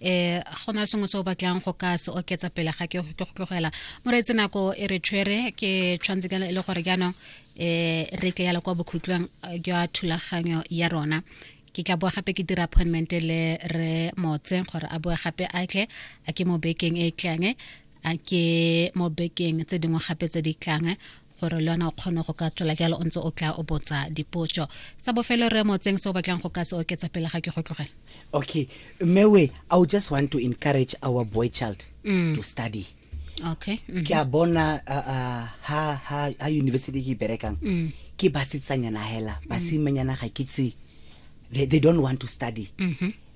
eh go na sengwe se o batlang go ka se oketsa pele ga ke go tlogela moreetse nako e re tshwere ke tshwanetse ka e le gore jaanong eh re tle yala kwa bokhutlong eh, jwa thulaganyo ya rona ke tla boa gape ke dira appointment le re motse gore a boe gape a tle a ke mo bekeng e tlang a ke mo bekeng tse dingwe gape tse di tlang gore le yona o kgone go ka tswela jalo o ntse o tla o botsa dipotso tsa bofelo re mo tseng se o batlang go ka se oketsa pele ga ke go tlogela okay mewe i would just want to encourage our boy child mm. to study okay mm -hmm. ke a bona uh, uh, ha, ha, ha university ke berekang mm. ke basetsanyana hela mm. basimanyana ga ke tse they, they don't want to study mm -hmm.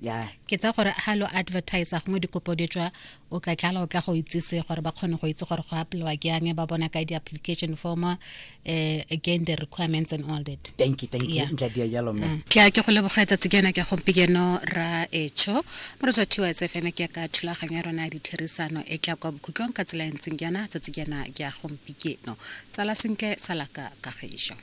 ya ke tsa gore ha lo advertise gongwe dikopo di tswa o ka tlala o tla go itsise gore ba kgone go itse gore go apelwa ke yang ba bona ka di-application form uh, again the requirements and all that thank you thank you ntla dia jalo mme mm. ke ke go leboga tsatsi ke yona ke gompieno ra etsho mo re tswa thiwa tsfm ke ka thulaganyo ya rona ya ditherisano e tla kwa bokhutlong ka tsela e ntseng ke yona tsatsi ke yona ke ya gompieno tsala sentle salaka kagišo